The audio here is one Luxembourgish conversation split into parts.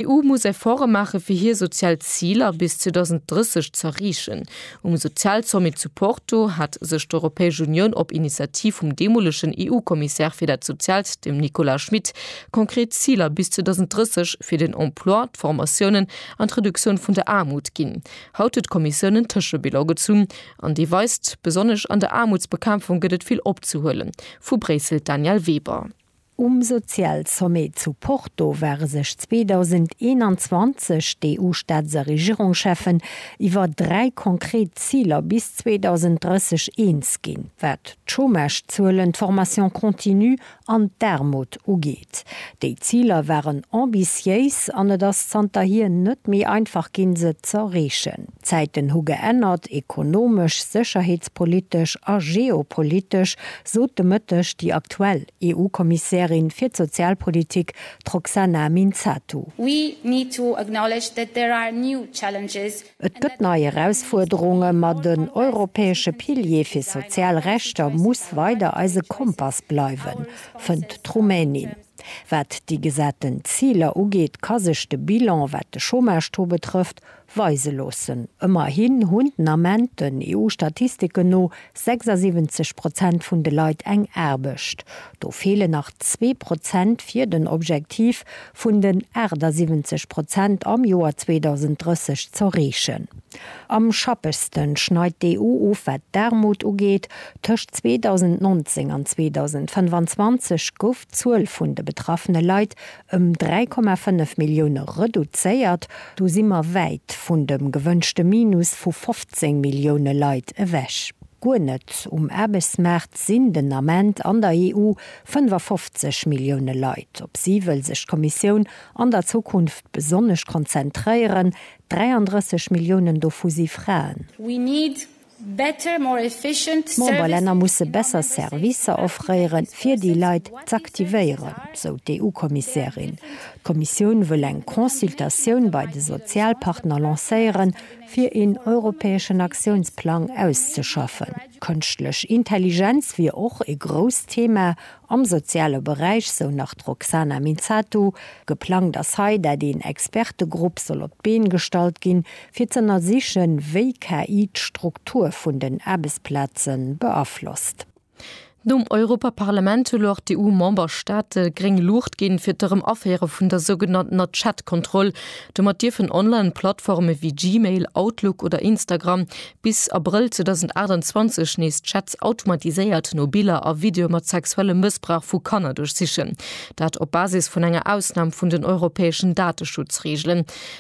D'EU muss Efforte maache fir hir sozial Ziler bis 2030 z'erreechen. Um Sozialsommet zu Porto hat sech d'Europäesch Unioun op Initiativ vum deemolegen EU-Kommissär fir dat Soziaalt, dem Nicolas Schmit, konkret Ziler bis 2030 fir den Emploi, d'Formatiounen an d'Reduktioun vun der Aarmut ginn. Haut huet d'Kommissioun en Tëschebilan gezunn an dee weist, besonnesch an der Aarmutsbekämpfung gëtt et vill opzehuelen. Vu Bréissel d'Danièle Weber. Um Sozialsommet zu Porto ware sech 2021 d'EU-Staats a Regierungscheffen iwwer dräi konkret Ziler bis 2030 eens ginn, wat d'Chômagezuelen, d'Formation continue an d'Aarmut ugeet. Déi Ziler waren ambitiéis an et ass zanterhier net méi einfach ginn, se z'erreechen. D'Zäiten hu geännert, ekonomesch, sécherheetspolitesch a geopolitesch, sot de Mëtteg déi aktuell EU-Kommissärin fir d'Sozialpolitik, d'Roxana Minzatu. We need to acknowledge that there are new challenges. Et gëtt nei Erausfuerderungen, ma den europäesche Pilier fir sozial Rechter muss weider eise Kompass bleiwen, fënnt d'Rumänin. Wat déi gesaten Ziler ugeet, ka sech de Bilan, wat de Chômage-Taux betrëfft, weise loossen. Ëmmerhin hunn den Ament, den EU-Statistiken no, 76 Prozent vun de Leit eng Aarbecht. Do feelen nach zwee Prozent fir den Objektiv vun den 78 Prozent am Joer 2030 z'erreechen. Am schappegste schneit d'EU of wat d'Aarmut ugeet. Tëscht 2019 an 2025 gouf d'Zuel vun de betraffene Leit ëm 3,5 Millioune reduzéiert. Do si mer wäit vun dem gewënschte Minus vu 15 Millioune Leit ewech. Guer net um Aarbechtsmaart sinn den Ament an der EU 55 Millioune Leit. Op si wëll sech d'Kommissioun an der Zukunft besonnesch konzentréieren. 33 Milliounen dovu si Fraen. We need D'Memberlänner musse besser Servicer offréiere fir déi Leit z'aktivéieren, sou d'EU-Kommissärin. D'Kommissioun wëll eng Consultatioun bei de Sozialpartner lancéieren, fir een europäeschen Aktiounsplang auszeschaffen. Kënschtlech Intelligenz wier och ee grousst Thema am soziale Beräich, sou nach d'Roxana Minzatu. Geplangt ass hei, dat een Expertegrupp soll op d'Been gestallt ginn, fir z'ënnersichen, wéi KI d'Struktur vun den Aarbechtsplaze beaflosst. Nom Europaparlament hu lor d'EU-Memberstaate gréng Luucht ginn, fir d'Erëm-Aféiere vun der sougenanntener Chat-Kontroll. Domat dierfen Online-Plattforme wéi Gmail, Outlook oder Instagram bis Abrëll 2028 nees Chats automatiséiert no Biller a Videoe mat sexuellem Mëssbrauch vu Kanner duerchsichen. Dat op Basis vun enger Ausnam vun den europäeschen Dateschutzreegelen.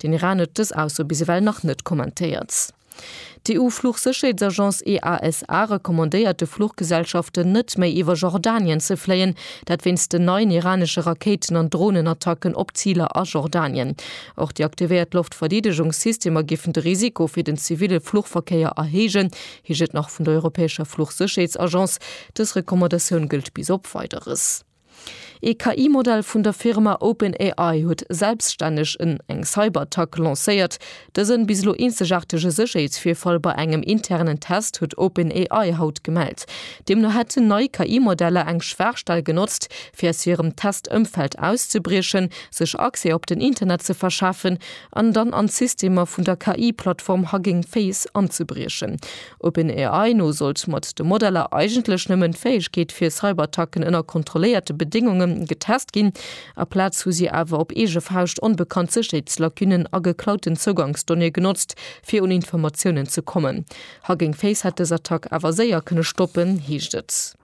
Den Iran huet dës Ausso bis ewell nach net kommentéiert. D'EU-Fluchsécherheetsagence EASA recommandéiert de Fluchgesellschaften net méi iwwer Jordanien ze fléien, dat wéinst den neien iranesche Rakéiten an Dronenattacken op Ziler a Jordanien. Och déi aktivéiert Loftverdeedegungssystemer géifen de Risiko fir den ziville Fluchverkéier erhéijen, heescht et nach vun der europäescher Fluchsécherheetsagence. Dës Recommandatioun gëllt bis op Weideres. Ee KI-Modell vun der Firma OpenAI huet selbstänneg en eng Cyberattack lancéiert. Dësen, bis elo eenzegaartege Sécherheetsvirfall bei engem internen Test huet OpenAI haut gemellt. Deemno hätten nei KI-Modeller eng Schwaachstell genotzt, fir aus hirem Test-Ëmfeld auszebriechen, sech Accès op den Internet ze verschafen an dann an d'Systemer vun der KI-Plattform Hugging Face anzebriechen. OpenAI no sollt mat de Modeller eigentlech nëmmen d'Fäegkeet fir Cyberattacken ënner kontrolléierte Bedéngunge getest ginn. Aplaz hu si awer op eege Fauscht onbekannt Sécherheetslacunen a geklauten Zougangsdonnéeë genotzt, fir un Informatiounen ze kommen. Hugging Face hätt dës Attack awer séier kënne stoppen, heescht et.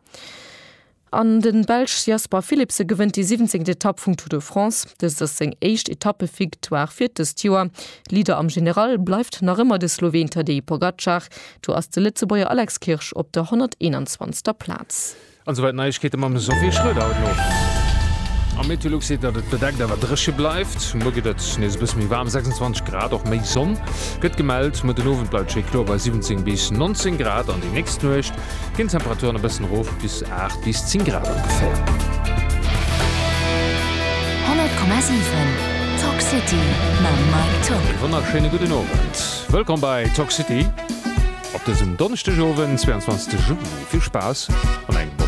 An de Belsch Jasper Philipsen gewënnt déi siwwenzéngt Etapp vum Tour de France. Dëst ass seng éischt Etappevictoire fir dëst Joer. Leader am General bleift nach ëmmer de Sloween Tadej Pogacar. Do ass de Lëtzebuerger Alex Kirsch op der 121. Plaz. An souwäit d'Neiegkeete mam Sophie Schröder haut no. Am Meteolux seet, datt et bedeckt awer dréche bleift. Muer gëtt et nees e bësse méi waarm, 26 Grad, och méi Sonn gëtt gemellt. Muer den Owend bleift schéi kloer bei 17 bis 19 Grad an déi nächst Nuecht ginn d'Temperaturen e bëssen erof bis 8 bis 10 Grad ongeféier. 100,7 Talk City mam Mike Top. Ee wonnerschéine gudden Owend. Wëllkomm bei Talk City op dësem Donneschdegowend, 22 Juli. Vill Spaass an engem.